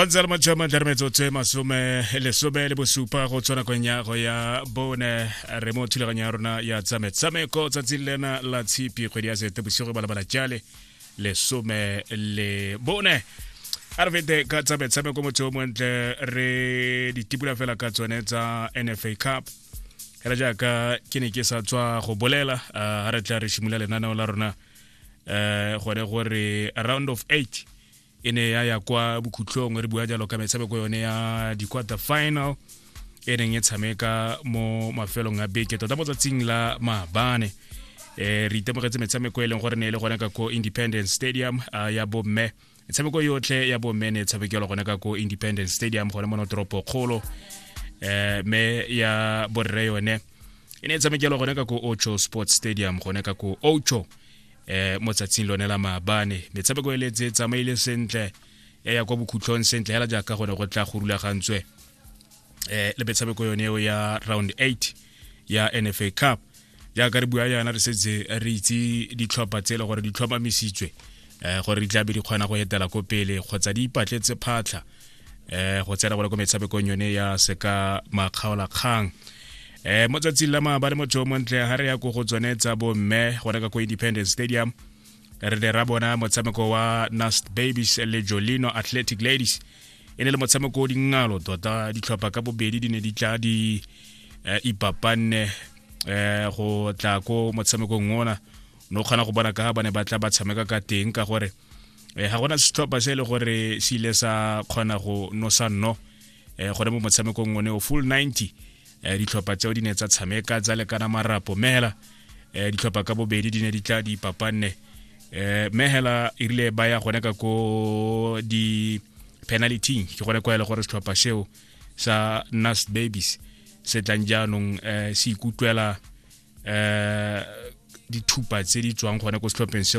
kgontse le motšhoma tla re metsotso e masome lesome le bosupa go tshwana kong ya go ya bone re mo thulaganyo ya rona ya tsa metshameko tsatsing lena la tshipi kgwedi ya sete bosigo ba lebala jale lesome le bone a re fete ka tsa metshameko motho o montle re ditipula fela ka tsone tsa nfa cup fela jaaka ke ne ke sa tswa go bolela ga re tla re simolola lenaneo la rona eh gore gore round of 8 e ne ya ya kwa bokhutlong re bua jalo ka metshameko yone ya di-quarter final e neng e tshameka mo mafelong a beke tota mo tsatsing la maabane um re itemogetse metshameko e leng gore ne e le gone ka ko independence stadium ya bomme tshameko yotlhe ya bomme ne tshabekelwa gone ka ko independence stadium gone mo notoropo kgolo eh me ya borre yone e ne tshabekelwa gone ka ko ocho sports stadium gone ka ko ocho eh mo tsatsing lone la maabane metshameko e letse tsamaile sentle ya ya kwa bokhutlhong sentle hela jaaka gone go tla go rulagantswe eh le metshameko yone eo ya round 8 ya NFA Cup jaaka re bua yana re setse re itse ditlhopha tse e le gore di tlhomamisitswe eh gore di tlabe di kgona go etela ko pele kgotsa di ipatletse phatlha eh go tsena gore ko metshamekong yone ya seka makgaola kgang eh mo tsatsing la maabane motho o montle ga re ya ko go tsone tsa bomme go reka ko independence stadium re ne ra bona motshameko wa nast babies le jolino athletic ladies e ne le motshameko o dingalo tota ditlhopha ka bobedi di ne di tla di eh, ipapanne eh, go tla ko motshamekong ona no kgona go bona ka ba ne ba tla ba tshameka ka teng ka gore eh, ga gona setlhopha se e le gore se ile sa kgona go nosa nno eh, gone mo motshamekong one o full 90 eh, ditlhopha tseo di ne tsa tshameka tsa lekana marapo mehela eh, ditlhopha ka bobedi di ne di tla di papanne eh, mehela e rile ba ya gone ka ko di penalty ke gone kwa e le gore setlhopha seo sa nas babies se tlang jaanong eh, se ikutlwela eh, dithupa tse di tswang gone ko setlhopheng seo